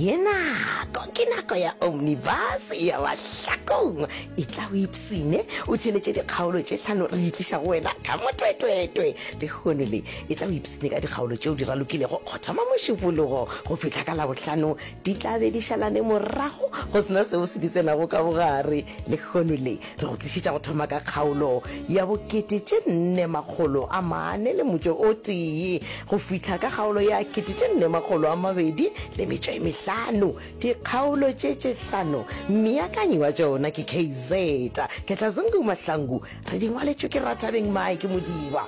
ye nako ke nako ya omnibus ya bahlakong e tla o ipsine o tšheletše dikgaolo tše hlano re itliša go wena ka motwetwetwe lehono le e tla o ipsine ka dikgaolo tšeo di ralokilego go thoma mošupologo go fihla ka labohlano di tla be di šalane morago go sena seo se di tsenago ka bogare lehono le re go tlišitša go thoma ka kgaolo ya bokete tše nne makgolo a mane le motšo o tee go fihla ka kgaolo ya kete tše nne makgolo a mabedi le metšo e mehlano dikgaolo tše tše hlano meakanyi wa tšona ke kz ketlazungu mahlangu re di ngwaletšwe ke rathabeng mike modiba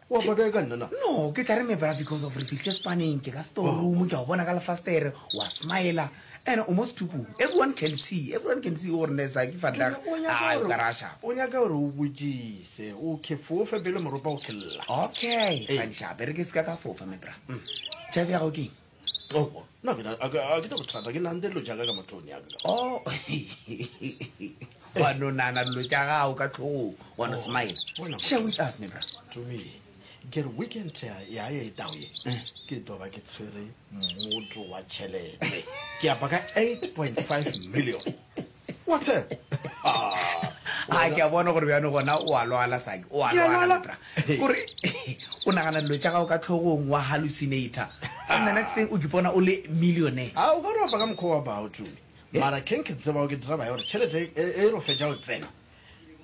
wa tla kae ka nna na no ke tla re mebra because of re fihle spaneng ke ka storeroom ke a o bona ka lefastere wa smile ene o mo stupung everyone can see everyone can see gore ne sa ke fatlag a o ka rasha o nyaka gore o botšise o ke fofe bele moropa o khella okay ga ntsha bere ke se ka ka fofa mebra tšhabe ya go ke Oh, no, ke na- a ke- a ke tla bothata ke nante dilo jaaka ka matlong yaka ka o wa no nana dilo tša gago ka tlhogong wa no Oh, smile wena- share with us mebra to me ke re weekend ya ya ya etao ye Eh. ke tlo ba ke tshwere motso wa tšhelete ke apa ka 8.5 million What's up? a ke a bona gore bjano gona o a lwala saki o a lwala bra gore o nagana dilo tša gago ka tlhogong wa hallucinator and the next thing o kipona o le millionaire a o ka ropa ka mokgwa wa bao tumi mara keng ke tseba o ke dira bae gore tšhelete e e ro fetša o tsena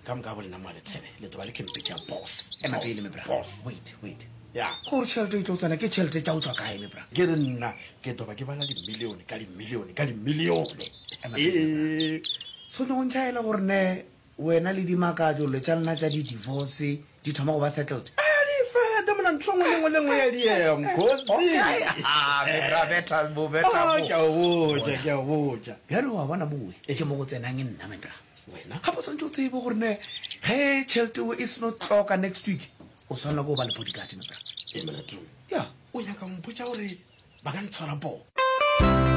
ka moka bolena moa letshebe le toba le kempetša boss ema pele mebra wait wait ya gore tšhelete e tlo tsena ke tšhelete tša o tswa kae mebra ke re nna ke toba ke bala dimilione ka dimilione ka dimilione ee so ne o ntšhaela gore ne wena le dimakatso le tša lena tša di-divorce di thoma go ba settled adifeta mona ntho ngwe lengwe lengwe ya diemgoziaabethabethabobetabjalo wa bona mowe ke mo go tsenang nna mebra Wena gape o swantse o tsebe gore ne ge tšheleteo e seno tloka next week o swanela ko o ba le bodyguard mepela e molato ya o nyaka mpotsa gore ba ka ntshwara poo